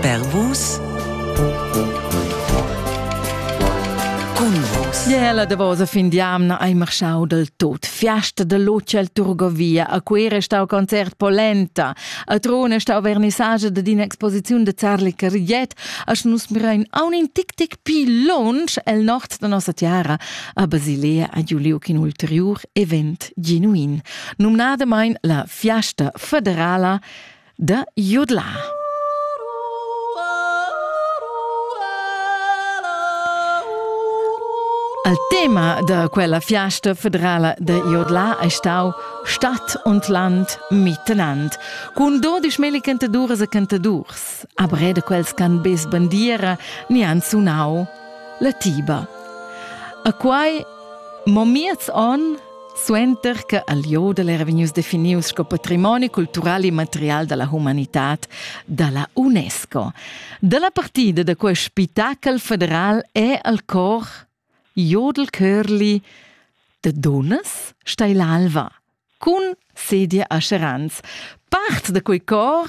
Per vus cun vus. Ie la davosa fin d'amna hai marschau del tot. Fiasta de luce al Turgovia, a Cuera è stau concert polenta, a Trona è stau vernissage de d'inexposiziun de Zarli Cariet, a nus mirein aun in tic tic pi lonsch el nord de nossa tiara, a Basilea a Giuliuc in ulteriur event genuin. Numnadamain la Fiasta federala da jodlar. Al tema da quella fiasta federala da Jodla è stau Stadt und Land miteinander. Cun dodisch meli cantadures e cantadurs, a breda quels can bez bandiera ni han sunau la tiba. A quai, mo miez on, Suenter che al jodel era vegnius definius sco patrimoni cultural immaterial dalla humanitad dalla UNESCO. Dalla partida da quei spitachel federal è al cor jodel Curli de Dunnas stai l'alva cun sedia a Scherans. Part da quei cor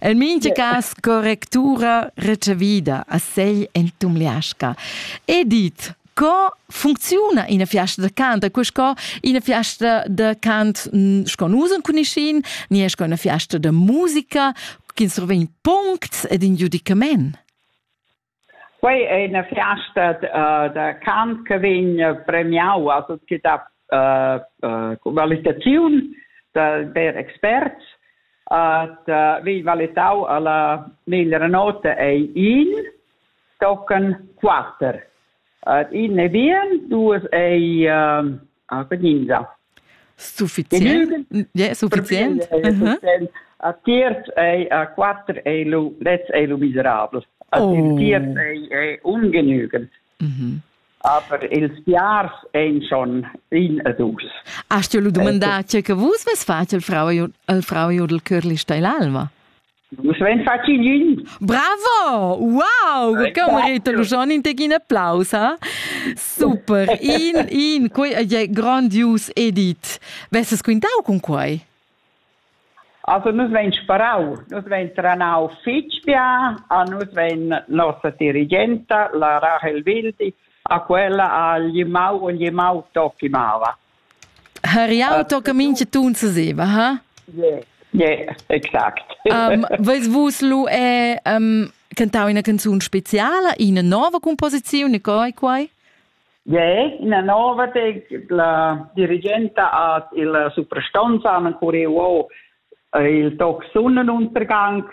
El mincha cas correctura retschavida a sei en Tumliasca. E dit, co funcziuna ina fiasta da cant? Cu sco ina fiasta da cant sco nus cuniscin, ni è sco una fiasta da musica, che survegn puncts ed in giudicament? Quei ei ina fiasta da cant che vegn premiau a tut che dat qualitaziun da ver experts. Vegn valitau alla meglra nota ei in tochen quater. In ei bien, duas ei Sufficient? Yeah, sufficient. A tiers ei a quater ei lu lez ei lu miserabel. A oh. tiers ei, ei ungenügend. Mhm. Aber ils piars ein schon in e dus. Hast du lu dumandar, tge che vus ves fatg al frau e al frau e al curli sta l'alma? Nus vein fatg ün. Bravo! Wow! Che merita lu schon in tec in applaus, ha? Super! In, in, quei è grandius edit. Vesses quintau cun quei? Also nus vein sparau, nus vein tranau fitg bia a nus vein nossa dirigenta, la Rahel Wildi, a quella a Glimau, Glimau Tokimava. Har jau tocca mincha tun seseva, ha? Yeah, yeah, exact. um, Vais vus lu è um, cantau ina canzun speciala, ina nova composiziun, e coi quai? Yeah, ina nova de la dirigenta at il suprastonza an curiuo il toc sunnen untergang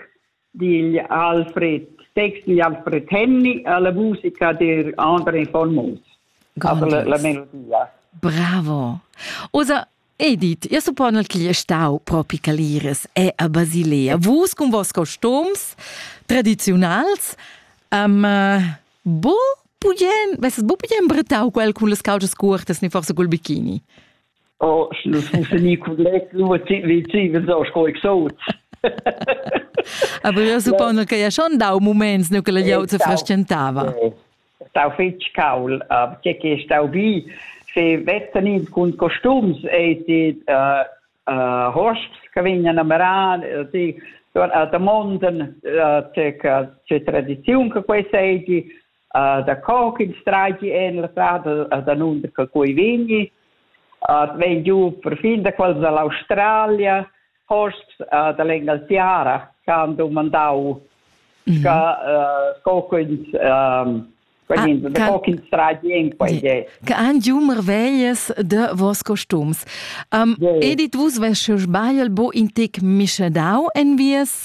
digl Alfred, text digl Alfred Henny alla musica der André von Moos. Aber la, la melodia. Bravo. Osa Edith, io suppon al cli stau propi Caliris e a Basilea. Vus con vos costums tradizionals um, bu pugen, vesses bu pugen bretau quel cun las caucas curtas, ni forse col bikini? Oh, sch'lu sun fini cun let, lu vegivas o sco exot. Aber das suppongo che ja schon dau moments nu che la glieud se frestgentava. Stau fetg caul, che che stau bi, se vezzan ins cun costums e die äh, äh, Horsts che vegnan a marar, die da monden, äh, che tradiziun che quei seigi, uh, da co ch'ins traigi en la strada uh, danunder che quei vegni. Uh, vegn giu perfin da quels dall'Australia, hosts uh, dall'Engaltiara che han domandau mm -hmm. sca, uh, co quins um, Ah, che han giù marveglias de vos costums. Um, yeah. Edit vus, wenn sche sbagl, bo in tec mischadau en vies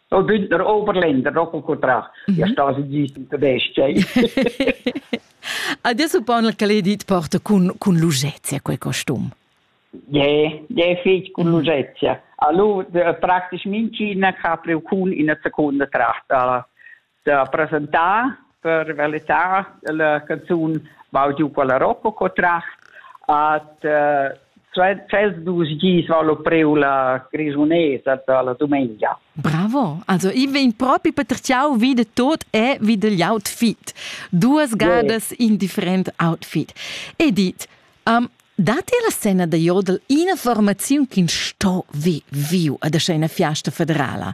No bündner Oberländer, no con contrar. Mm -hmm. Ja sta si gist in tedesca. Adesso pon che l'edit porta con con lugezia quel costum. Je, je fich con lugezia. Allo praktisch min Cina capre con in seconda tracht alla da presentar per verità la canzun Bau giu quella rocco co tracht at tschels dus gis val lo preu la grisunesa da la dumengia. Bravo! Also i vegn propi patertgiau vi de tot e vi degl outfit. Duas gadas yeah. in different outfit. Edith, um, dati la scena da jodel ina formaziun ch'ins sto vi viu ad ina fiasta federala?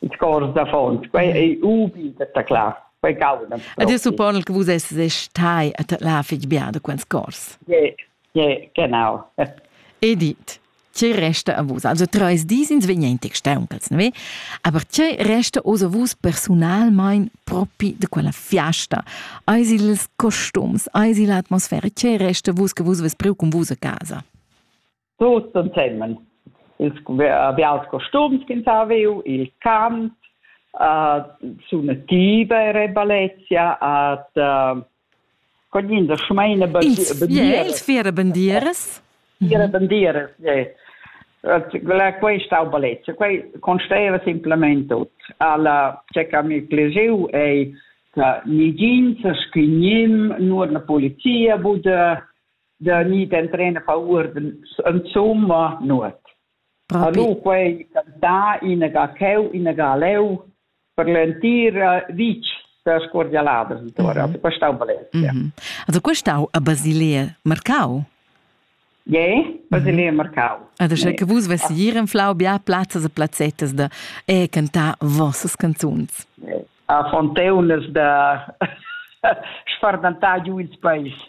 ils cors d'affons. Quei ei ubi da taclar. Quei cauda. Ed io suppon che vus esses stai a taclar fitg bia da quels cors. Ie, ie, genau. Edith, tge resta a vus? Also treis dis ins vegna in tec stauncals, ne? Aber tge resta oz a vus personalmein propi de quella fiasta? Eis ils costums, eis l'atmosfera, tge resta vus che vus ves priu con vus a casa? Tuts ensemen. Ils bials costums ch'ins ha viu, il cant, uh, suna tiva e reballezia, at uh, cognin da schmeina Ins fiera bandieras? Fiera bandieras, yeah. Quei stau balezia, quei consteva simplement tut. Alla ce che mi pleseu ei che nigin sa schignim nur na polizia bude da ni d'entrener paur insomma nuot. Allo quei cantà inaga cheu, inaga leu per l'entira vitg da scordialadas intora, mm -hmm. questa Valencia. Mm -hmm. Also questa a Basilea Marcau? Je, Basilea Marcau. Adesso nee. che vus vesi ir in Flau bia plazzas e plazzettes da e cantar vossas canzuns. A fonteunas da sfardantar giù il paese.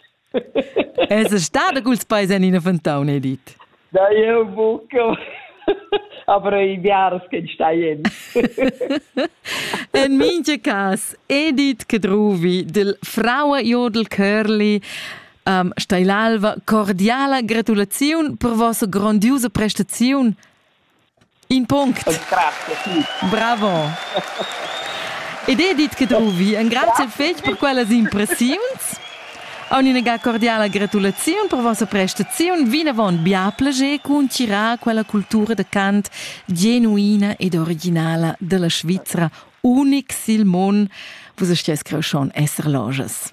Es stada culs peis en ina fontauna, hai dit. Da jeu buca. Aber i biaras che staien. en minge cas, Edith Kedruvi del Fraua Jodel Curly um, stai l'alva cordiala gratulaziun per vossa grandiusa prestaziun In punct. Bravo. Ed Edith Cadruvi, engrazia el fetg per quellas impressiuns. Aun ina ga cordiala gratulaziun per vossa prestaziun, vinavon bia plager concirar quella cultura da cant genuina ed originala dalla Svizra, unic sil mon. Vus sties creschon esser lojas.